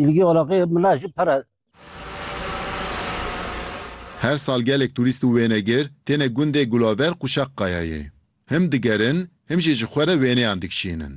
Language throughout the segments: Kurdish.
Îlgî alaqê mila jî pere. Her sal gelek turîst û wênegir têne gundê Gulaver Qûşaqkayayê. Him digerin, him jî ji xwe re wêneyan dikişînin.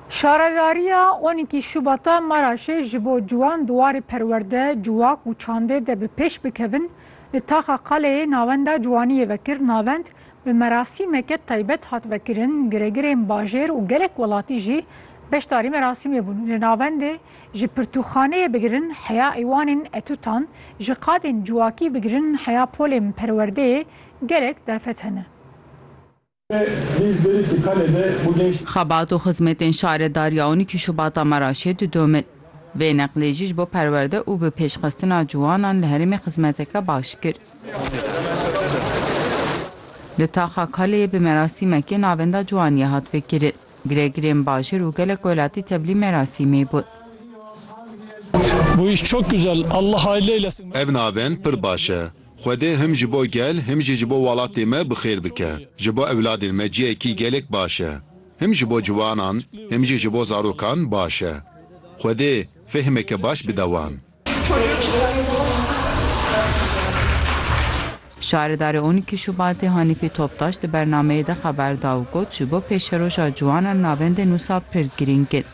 Şaredariya on îkî Şubata Maraşê ji bo ciwan di warê perwerde, ciwak û çandê de bi pêş bikevin, li Taxa Qaleyê navenda ciwaniyê vekir navend Bi merasîmeke taybet hat vekirin, giregirên bajêr û gelek welatî jî beşdarî merasîmê bûn. Li navendê ji pirtûkxaneyê bigirin heya eywanên etûtan, ji qadên ciwakî bigirin heya polên perwerdeyê gelek derfet hene. Xebat û xizmetên şaredarî ya on û iki Şubata Meraşê didomin. Vê neqlê jî ji bo perwerde û bi pêşxistina ciwanan li herêmê xizmeteke baş kir. Li Taxa Kaleyê bi merasîmekê navenda ciwaniyê hat vekirin. Girêgirên bajêr û gelek welatî tevlî merasîmê bûn. Ev navend pir baş e. Xwedê him ji bo gel him jî ji bo welatê me bi xêr bike. Ji bo ewladên me cihekî gelek baş e. Him ji bo ciwanan him jî ji bo zarokan baş e. Xwedê fêhmeke baş bide wan. Şaredarê on îkî Şubatê Hanîfî Toptaş di bernameyê de xeber da û got ji bo pêşeroja ciwanan navendên wisa pir girîng in.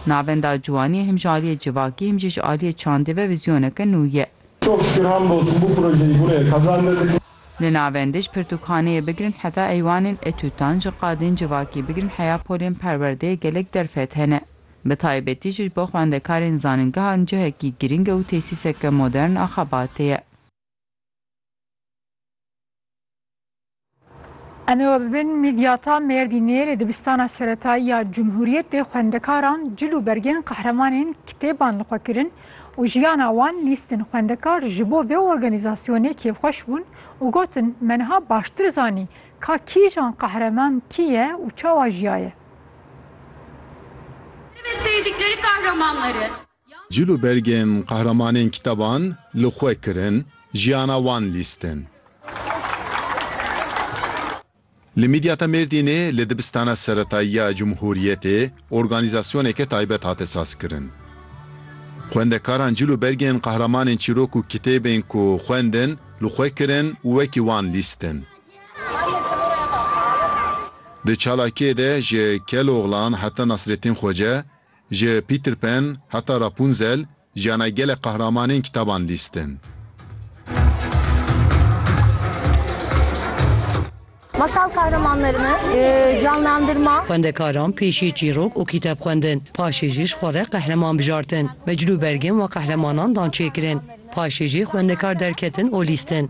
Navenda ciwanî him ji aliyê civakî him jî ji aliyê çandê ve vîzyoneke nû ye. Çok şükür hamdolsun bu projeyi buraya kazandırdık. Li navendê ji pirtûkxaneyê bigirin heta eywanên etûtan ji qadên civakî bigirin heya polên perwerdeyê gelek derfet hene. Bi taybetî jî bo xwendekarên zanîngehan cihekî girîng e û tesîseke modern a xebatê ye. Em ê we bibin mîdyata Mêrdînê li dibistana seretayî ya Cumhuriyetê xwendekaran cil û bergên qehremanên kitêban li xwe kirin û jiyana wan lîstin. Xwendekar ji bo vê organîzasyonê kêfxweş bûn û gotin, Me niha baştir zanî ka kîjan qehreman kî ye û çawa jiyaye. Cil û bergên qehremanên kitaban li xwe kirin, jiyana wan lîstin. Li Midyata Mêrdînê li dibistana seretayî ya Cumhuriyetê organîzasyoneke taybet hate sazkirin. Xwendekaran cil û bergên qehremanên çîrok û kitêbên ku xwendin li xwe kirin û wekî wan lîstin. Di çalakiyê de ji Keloğlan heta Nasrettin Xoce, ji Peter Pan heta Rapunzel jiyana gelek qehramanên kitaban lîstin. Masal kahramanlarını canlandırma. Xwendekaran pêşî çîrok û kîteb xwendin, paşê jî ji xwe re qehreman bijartin. Meclûbergên we qehremanan dan çêkirin. Paşê jî xwendekar derketin û lîstin.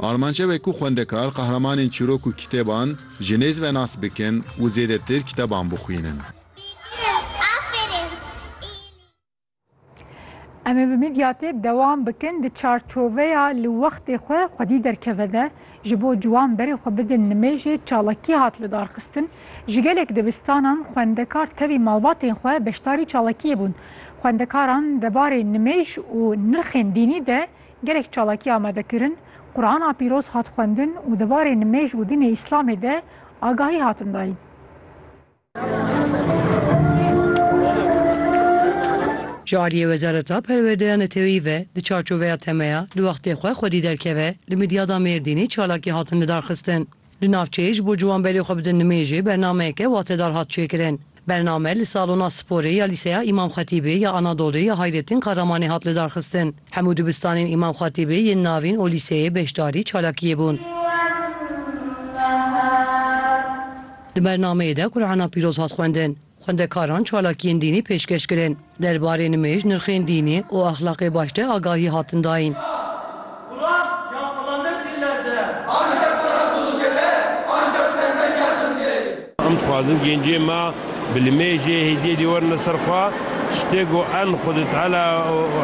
Armanca we ku xwendekar qehremanên çîrok û kitêban ji nêz ve nas bikin û zêdetir kiteban bixwînin. Em ê bi mîdyatê dewam bikin di çarçoveya li wextê xwe xwedî derkeve de ji bo ciwan berê xwe bidin nimêjê çalakî hat lidarxistin. Ji gelek dibistanan xwendekar tevî malbatên xwe beşdarî çalakiyê bûn. Xwendekaran debarê nimêj û nirxên dînî de Gelek çalakiya me dikirin, Qurana Pîroz hat xwendin û di barê nimêj û dînê Îslamê de agahî hatin dayîn. Ji aliyê Wezareta Perwerdeya Neteweyî ve di çarçoveya temeya di wextê xwe xwedî derkeve, li Midyada Mêrdînê çalakî hatin lidarxistin. Di navçeyê ji bo ciwan berê xwe bidin nimêjê bernameyeke watedar hat çêkirin. Bername li salona sporê ya Lîseya Îmam Xetîbê ya Anadolê ya Hayrettin Kahramanê hat lidarxistin. Hemû dibistanên Îmam Xetîbê yên navîn û lîseyê beşdarî çalakiyê bûn. Di bernameyê de Qur'ana Pîroz hat xwendin. Xwendekaran çalakiyên dînî pêşkeş kirin. Derbarê nimêj nirxên dînî û exlaqê baş de agahî hatin dayîn. Em dixwazin gencên me bi nimêjê hêdiyê dê werin li ser xwe, tiştê ku en Xwedê Teala û.